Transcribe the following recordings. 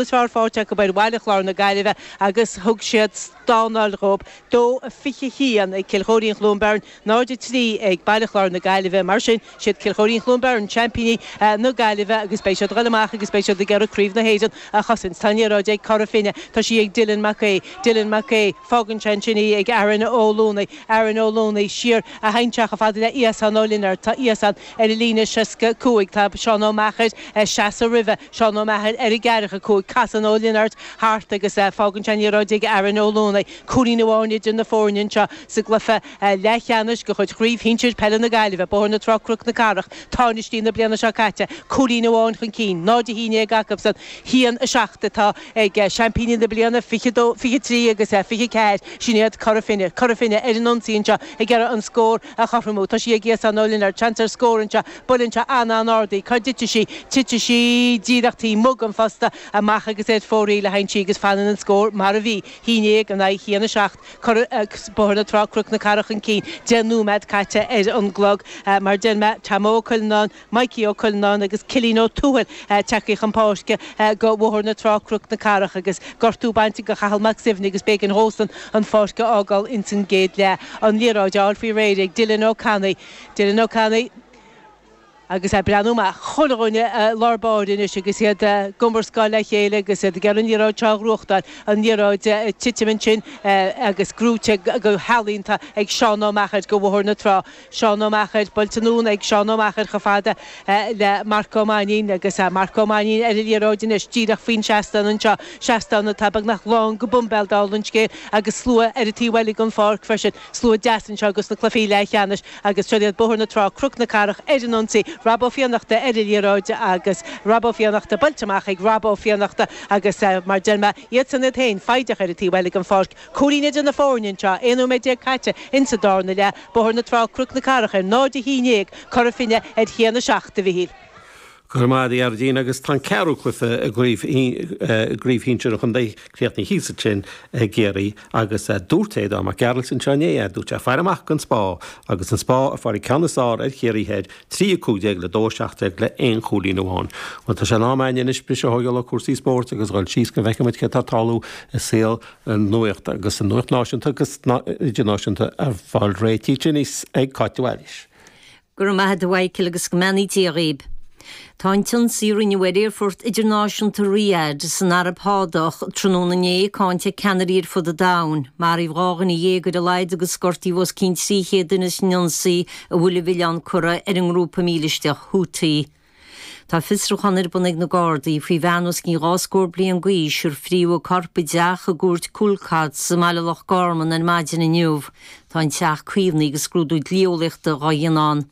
Is fearr fáilte acu ar Bhaile Chláir na Gaillimhe agus thug siad stánáil dhóib, 2-21 ag Cill Chóirín-Chluain Bheirn, 0-3 ag Baile Chláir na Gaillimhe. Mar sin, siad Cill Chóirín-Chluain Bheirn seaimpíní na Gaillimhe agus beidh siad ag dul amach agus beidh siad ag iarraidh Craobh na hÉireann a chosaint. Tá an liathróid ag Cora Finne. Tá sí ag Dylan Mac Aoidh. Dylan Mac Aoidh. Fágann sé ansin í ag Aaron Ó Luanaigh. Aaron Ó Luanaigh. Siar a théann sé chomh fada le Iasán Ó Lionáird. Tá Iasán ar an líne 65. Tá Seán Ó Meachair ag seasamh roimhe. Seán Ó Meachair, Ar an gceathracha cúig, casann Ó Lionáird thart agus fágann sé an liathróid ag Aaron Ó Luanaigh. Cúilín amháin idir na foirne anseo sa gcluiche leathcheannais de chuid Chraobh Shinsir Peile na Gaillimhe, Bóthar na Trá-Cnoc na Cathrach, tánaistí na bliana seo caite cúilín amháin chun cinn, 0-11 acusan, haon a seacht atá ag seaimpíní na bliana 23 agus 24, sin iad Cora Finne. Cora Finne ar an ionsaí anseo ag iarraidh an scór a chothromú. Tá sí ag Iasán Ó Lionáird. Seans ar scór anseo. Buaileann sé an-, an-ard í, cá dtitfidh sí? Titfidh sí díreach taobh amuigh den phosta, amach agus ar fóraoil a théann sí agus fanann an scór mar a bhí, haon déag in aghaidh haon a seacht, cor agus Bóthar na Trá Cnoc na Cathrach chun cinn, deich nóimead caite ar an gclog. Mar a deir mé, Tomo Ó Cuilleanáin, Mikey Ó Cuilleanáin agus Cillín Ó Tuathail ag teacht chun páirce go Bhóthar na Trá Cnoc na Cathrach agus gortú bainte go Chathal Mac Suibhne agus b'éigean dhósan an pháirc a fhágáil ins an gcéad leath. An liathróid á fháil faoi réir ag Dylan Ó Cannaidh, Dylan Ó Cannaidh, Agus ag breathnú amach chuile dhuine i lár báire anois agus iad ag iomrascáil le chéile agus iad ag iarraidh an liathróid seo a ghnóthachtáil, an liathróid ag titim ansin agus gnóthaithe go healaíonta ag Seán Ó Meachair go Bhóthar na Trá. Seán Ó Meachair, buailte anonn ag Seán Ó Meachair chomh fada le Marc Ó Mainín agus Marc Ó Mainín ar an liathróid anois díreach faoin seastán anseo, seastán atá beagnach lán go boimbéal dála an scéil agus slua ar an taobh eile den pháirc freisin. Slua deas anseo ages na cluifí leathcheannais agus seo iad Bóthar na Trá, Cnoc na Cathrach ar an ionsaí, Rob Ó Fiannachta ar an liathróid agus Rob Ó Fiannachta buailte amach ag Rob Ó Fiannachta agus mar deir mé, iadsan iad féin, foighdeach ar an taobh eile den pháirc. Cúilín idir na foirne anseo, 11 nóiméad caite insa darna leath, Bóthar na Trá, Cnoc na Cathrach ar 0-11, Cora Finne ar 1-7, a Mhichíl. Go raibh maith a'd a Ghearóidín agus tá an ceathrú cluife i gcraobh shinsir an chontae críochnaithe thíos ansin i gCiarraí agus dúirt Aodán Mac Gearailt anseo inné, dúirt sé fair amach don Spá agus an Spá a fuair an ceann is fearr ar Chiarraí Thoir 3 15 le 2 17 le 1 chúilín amháin. Bhuel tá sé in am againne anois briseadh a thógáil ó chúrsaí spóirt agus dhul síos go bhfeicfimid céard atá ag tarlú i saol na nuachta agus an nuacht náisiúnta agus idirnáisiúnta á fáil réitithe anois ag Cáit de Bhailís. Go raibh maith a't a Mhichael agus go mbeannaí Dia dhaoib. Tá an t-ionsaí a rinneadh ar aerfort idirnáisiúnta Riyadh san Araib Shádach tráthnóna inné cáinte ag ceannairí ar fud an domhain. Maraíodh dhá dhuine dhéag ar a laghad agus gortaíodh os cionn 300 duine san ionsaí a bhfuil a mhilleán curtha ar an ngrúpa mílisteach Houthi. Tá fiosrúchán ar bun ag na Gardaí faoi bhean os cionn dhá scór bliain d'aois ar frítheadh a corp i dteach i gCúirt Coolcotts i mBaile Loch Garman ar maidin inniu. Tá an teach caomhnaithe agus scrúdú dlí-eolaíochta dhá dhéanamh ann.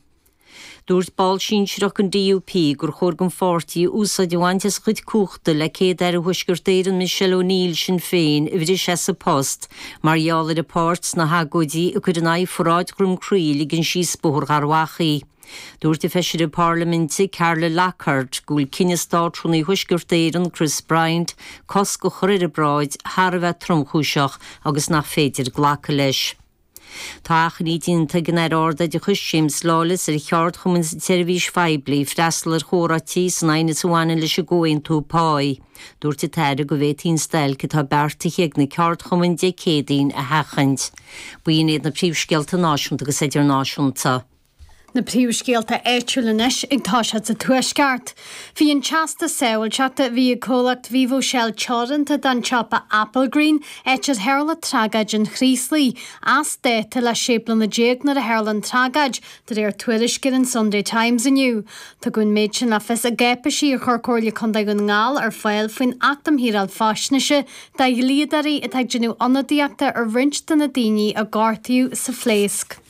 Dúirt ball sinsearach den DUP gur chóir don pháirtí úsáid a bhaint as a chuid cumhachta le Céad-Aire Thuaisceart Éireann Michelle O'Neill Shinn Féin a bhriseadh as a post mar gheall ar a páirt sna hagóidí a cuireadh in aghaidh pharáid Dhroim Crí a ligean síos Bóthar Gharbhachaidh. Dúirt an Feisire Parlaiminte, Carla Lockhart, go bhfuil cinneadh Státrúnaí Thuaisceart Éireann, Chris Bryant, cosc a chur ar an bparáid thar a bheith tromchúiseach agus nach féidir glacadh leis. Tá achainí déanta ag an Aire Ardoideachais, James Lawless, ar cheardchumainn sa tseirbhís phoiblí freastal ar chomhráití san aighneas a bhaineann leis an gcomhaontú páí. Dúirt an tAire go bhféadfaí an stailc atá beartaithe ag na ceardchumainn Dé Céadaoin a sheachaint. B'in iad na príomhscéalta náisiúnta agus idirnáisiúnta. Na príomhscéalta áitiúla anois ag toiseacht sa Tuaisceart. Bhí an Teastas Sábháilteachta a bhí ag comhlacht Vivo Shell Teoranta don tsiopa Applegreen áit ar tharla tragóid an Chraoslaigh, as dáta le 16 bliana nuair a tharla an tragóid, de réir tuairisc ar an Sunday Times inniu. Tugadh an méid sin le fios i gcáipéisí a chuir Comhairle Contae Dhún na nGall ar fáil faoin Acht um Shaoráil Faisnéise do dhlíodóirí atá ag déanamh ionadaíochta ar roinnt de na daoine a gortaíodh sa phléasc.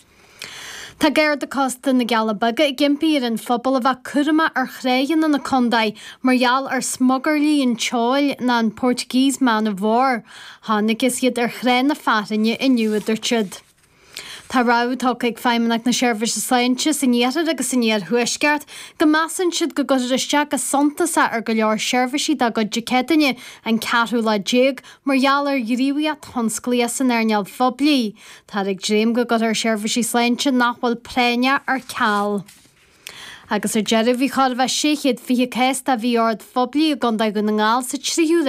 Tá Garda Cósta na gCealla Beaga ag impí ar an phobal a bheith cúramach ar thráigheanna na condae mar gheall ar smugairlí an tseoil ná an Portuguese Man of War. Chonacthas iad ar Thrá na Fearthainne inniu a dúirt siad. Tá rabhadh tugtha ag Feidhmeannacht na Seirbhíse Sláinte san Iarthar agus san Iarthuaisceart go measann siad go gcuirfear isteach go suntasach ar go leor seirbhísí dá gcuid Dé Céadaoine an ceathrú lá déag mar gheall ar ghníomhaíocht thionsclaíoch san earnáil phoiblí. Táthar ag dréim go gcuirfear seirbhísí sláinte nach bhfuil práinneach ar ceal. Agus ar deireadh, bhí chóir a bheith 620 cás de mhí-ord phoiblí i gcontae Dhún na nGall sa tríú ré